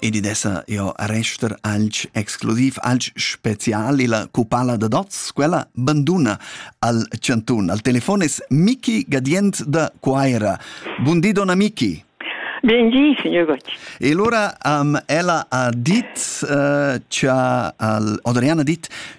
ed id esa eau a rester alch exclusiv, alch special illa cupala da dots, quella banduna al chantun. Al telefon es Miki Gadient da Cuaira. Bun di, donna Miki. Bun di, signor Gott. E allora um, ella ha dit uh, cha al Adriana dit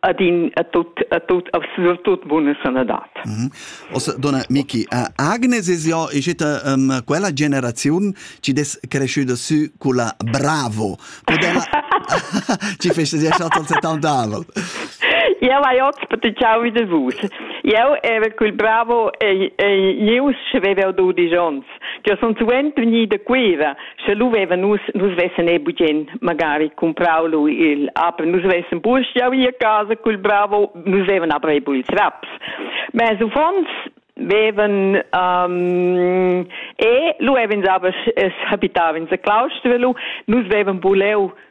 ad in a tut a tut a surtut buna sanadad. Mm -hmm. Also, donna Miki, uh, Agnes es jo ischita um, quella generaziun ci des cresciuta su culla bravo. Modella ci feste sia schat al 70 anni. Ja, vai ots per ti ciao wieder vus. Io ero quel bravo e e io aveva 12 anni. che sun suenter gnì da Cuira, sche lu vevan nus, nus vessen ei bugen magari cumprau lu il apen, nus vessen burschiau ir a casa cul bravo, nus vevan aber ei bu ils raps. Ma ils uffants vevan um, e lu evens aber es habitavens a Claustrelu, nus vevan buleu